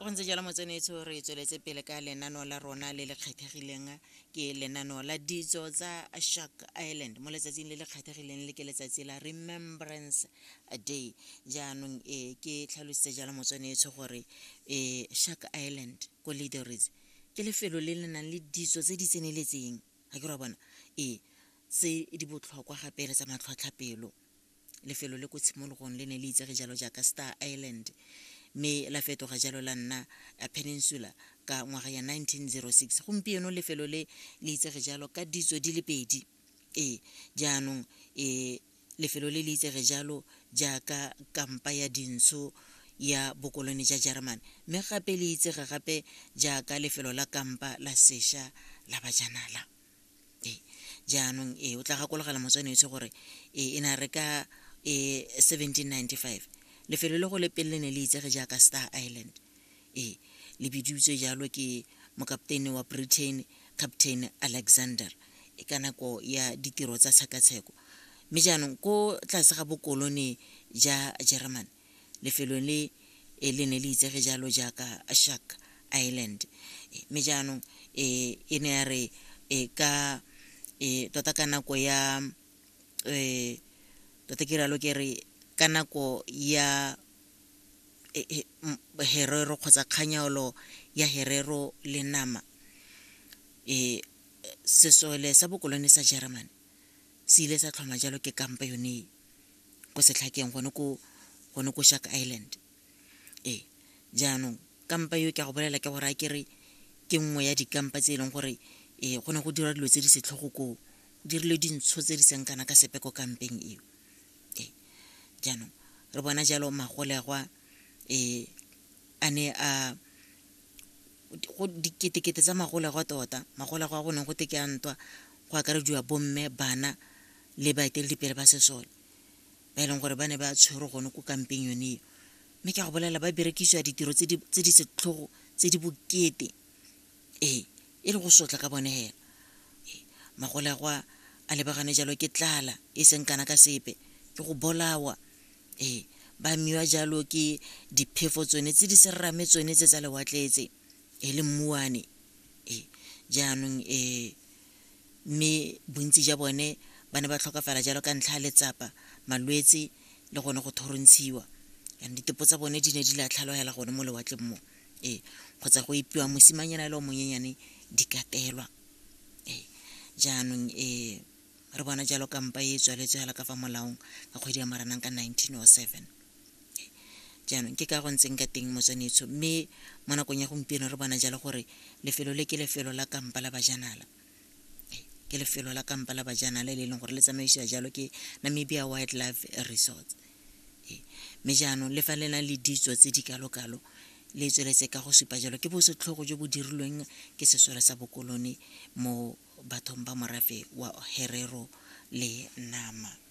go ntse jalo motsenetso re tsweletse pele ka lenano la rona le le kgethegileng ke lenano la ditso tsa shark island mo letsatsing le le kgethegileng le ke letsatsi la remembrance day jaanong e ke tlhalositse jalo motsenetso gore e shark island ko leadoris ke lefelo le le nang le ditso tse di tseneletseng ga ke ra bona ee tse di botlhokwa gape le tsa matlhotlhapelo lefelo le ko tshimologong le ne le itsege jalo jaaka star island mme la fetoga jalo la nna peninsula ka ngwaga ya 1906 gompieno lefelo le le itsege jalo ka ditso di le pedi ee jaanong e lefelo le le itsege jalo jaaka kampa ya dintsho ya bokolone ja jeremane mme gape le itsege gape jaaka lefelo la kampa la sesha la bajanala jaanong e o tla gakologela motswene etse gore e ne re ka e 1795 lefelo le go le pele ne le itsege jaaka star island e le bidiwtswe jalo ke mokapteine wa britain captain alexander e ka nako ya ditiro tsa tshekatsheko mme jaanong ko tlase ga bokolone ja germany Lefelo le e le ne le itsege jalo jaaka Shark Island. Mme jaanong e e ne ya re e ka e tota ka nako ya e tota ke rialo ke re ka nako ya e, e, m- herero kgotsa kganyaolo ya herero le nama e sesole sa bokolone sa German se ile sa tlhoma jalo ke kampa yone e. ko setlhakeng gone ko gone ko shark island ee jaanong kampa yo ke a go bolela ke gore a kere ke nngwe ya dikampa tse e leng gore ee go ne go dira dilo tse di setlhogo koo go dirile dintsho tse di seng kana ka sepe ko kampeng eo ee jaanong re bona jalo magolegwa ee a ne a go diketekete tsa magolegwa tota magolegwa go ne go te ke a ntwa go akarediwa bomme bana le baeteledipele ba sesole ba e leng gore ba ne ba tshwerwe gone ko kampeng yone eo mme ke a go bolelela ba berekisiwa ditiro tse di setlhogo tse di bokete ee e le go sotla ka bone hela magole a go a lebagane jalo ke tlala e seng kana ka sepe ke go bolawa ee ba miwa jalo ke diphefo tsone tse di serame tsone tse tsa lewatletse e le mmuane ee jaanong ee mme bontsi ja bone ba ne ba tlhokafala jalo ka ntlha ya letsapa, malwetse le gone go thorontshiwa. Jaanong ditepo tsa bone di ne di latlhalogela gone mo lewatleng mo. Ee, kgotsa go epiwa mosimanyana le o monyenyane di katelwa. Ee, jaanong ee re bona jalo kampa e tswaletswe fela ka fa molaong ka kgwedi ya Moranang ka 1907. jaanong ke ka go ntseng ka teng motswanetsho mme mo nakong ya gompieno re bona jalo gore lefelo le ke lefelo la kampa la bajanala ke lefelo la kampa la bajanala le e leng gore le tsamaisiwa jalo ke namibia wildlife resorts mme jaanong le fa le na le ditso tse di kalo-kalo le tsweletse ka go supa jalo ke bosetlhogo jo bo dirilweng ke sesole sa bokolone mo bathong ba morafe wa herero le nama